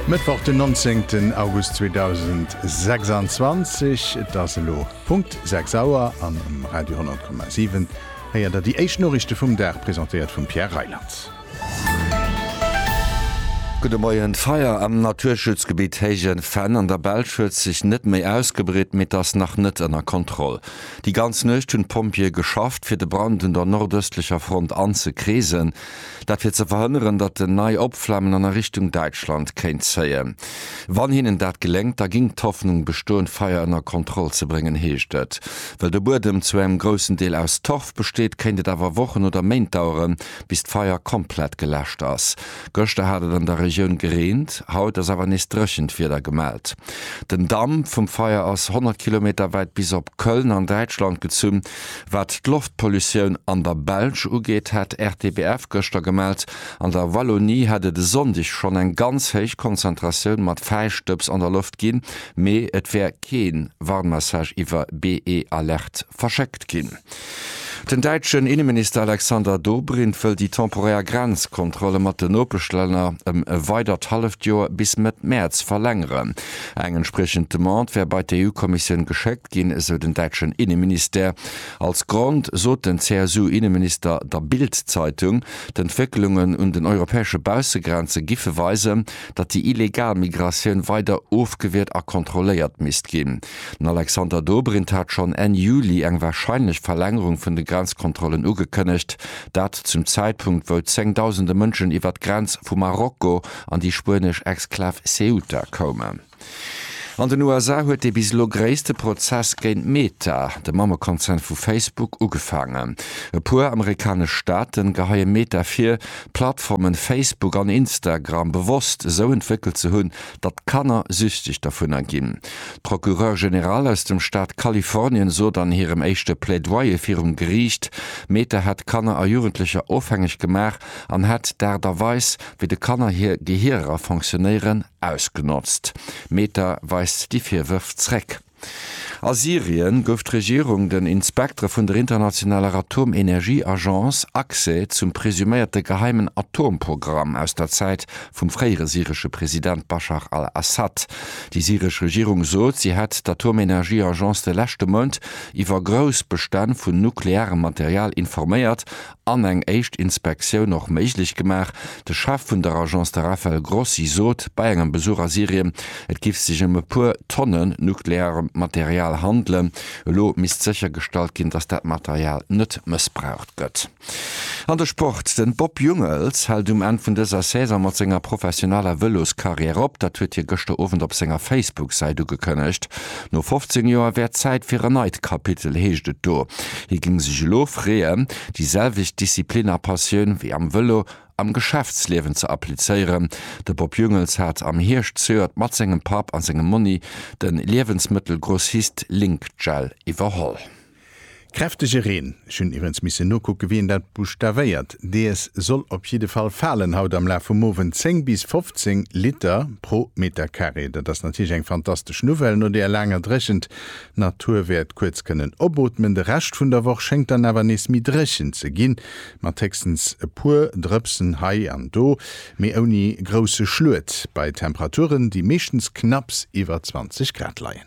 Mëttwoch den 19 August 2026, et ass elo Punkt 6 Auer an um Radio 10,7 héiert der déi éischt Noriichte vum Dag, presentéiert vum Pierre Reyland. Gudde Moien, D'Feier am Naturschutzgebitt Héijen Fenn an der Belsch huet sech net méi ausgebreet, mee et ass nach net ënner Kontroll. Déi ganz Nuecht hunn d'Pompjeeë geschafft, fir de Brand un der nordëstlecher Front anzekreesen. Dat fir ze verhënneren, datt en nei Opflammen an a Richtung Däitschland kéint zéien. Wann hinnen dat geléngt, da géing d'Hoffnung bestoen, d'Feier ënner Kontroll ze bréngen, heescht et. Well de Buedem zu engem groussen Deel aus Torf besteet, kéint et awer Wochen oder Méint daueren, bis d'Feier komplett geläscht ass. Gëschter hat et an der Regioun gereent, haut ass awer nees dréchent Wieder gemellt. Den Damp vum Feier ass 100 Kilometer wäit bis op Köln an Däitschland gezunn. Wat d'Loftpollutioun an der Belsch ugeet, hat RTBF gëschter gemellt, an der Wallonie hätt et e Sonndeg schonn eng ganz héich Konzentratioun mat Fäistëbs an der Loft ginn, mee et wär kee Warnmessage iwwer BE-Alerte verschéckt ginn. Den däitschen Inneminister Alexander Dobrindt wëll déi temporär Grenzkontrolle mat den Nopeschlänner ëm e weidert halleft Joer bis Mëtt Mäerz verlängeren. Eng entspriechend Demande wär bei d'EU-Kommissioun geschéckt. gestoppt ginn, esou den däitschen Inneministère. Als Grond sot den CSU-Inneminister der Bild-Zeitung, d'Entwécklungen un den europäesche Baussegrenze giffe weisen, datt déi illegal Migratioun weider ofgewiert a kontrolléiert misst ginn. Den Alexander Dobrindt hat schonn Enn Juli eng warscheinlech Verlängerung vun de Grenzkontrollen ugekënnegt, dat zum Zäitpunkt wou zéngdausende Mënschen iwwer d'Grenz vu Marokko an déi spuenesch Exklav Ceuta koumen. An den USA huet dee bis elo gréisste Prozess géint Meta, de Mammekonzern vu Facebook, ugefaangen. E puer amerikanesch Staaten geheie Meta vir, d'Plattformen Facebook an Instagram bewosst esou entwéckelt ze hunn, datt Kanner süchteg dovunner ginn. D'Procureure Generale aus dem Staat Kalifornien sot an hirem éischte Plaidoyer virum Geriicht, Meta hätt Kanner a Jugendlecher ofhängeg gemaach an hätt d'Aart a Weis, wéi de Kanner hir Gehierer fonctionnéieren, Ausgenotzt. Meta weist déi Virwërf zréck. A Syrien gouf d'Regierung den Inspektere vun der internationaler Atomenergieagence Accès zum presuméierte geheimen Atomprogramm aus der Zäit vum fréiere syresche President Baschar al-Assad. Déi syresch Regierung sot, si hätt d'Atomenergieagence de leschte Mount iwwer grouss Bestänn vun nuklearem Material informéiert an eng éischt Inspektioun och méiglech gemaach. De Chef vun der Agence, de Rafael Grossi, sot bei engem Besuch a Syrien, et giff sech ëm e puer Tonne nukleaarem Material handelen. Elo misst séchergestallt ginn, datt dat Material net mëssbraucht gëtt. An de Sport, De Bob Jungels hält um Enn vun dëser Saison mat senger professioneller Vëloscarrière op. Dat huet hie gëschter Owend op senger Facebook-Säit ugekënnegt. No 15 Joer wär Zäit fir en neit Kapitel, heescht et do. Hie géing sech elo freeën, déi selwecht Disziplin a Passioun wéi am Vëlo am Geschäftsliewen ze applizéieren. De Bob Jungels hat am Hierscht zejoert mat sengem Papp a sengem Monni de Liewensmëttelgrossist Link-Gel iwwerholl. Kräftege Reen, ech hunn iwwrens missen nokucken, wéi een dat buschtavéiert, dees soll op jidde Fall falen haut am Laf vum Owend. 10 bis 15 Liter pro Metercarré, dat ass natierlech eng fantastesch Nouvelle no deer laanger Dréchent. D'Natur wäert kuerz kënnen opootmen. De Rescht vun der Woch schéngt dann awer nees méi dréchen ze ginn, mat héchstens e puer Drëpsen hei an do, mee ouni grousse Schluet, bei Temperaturen, déi meeschtens knapps iwwer 20 Grad leien.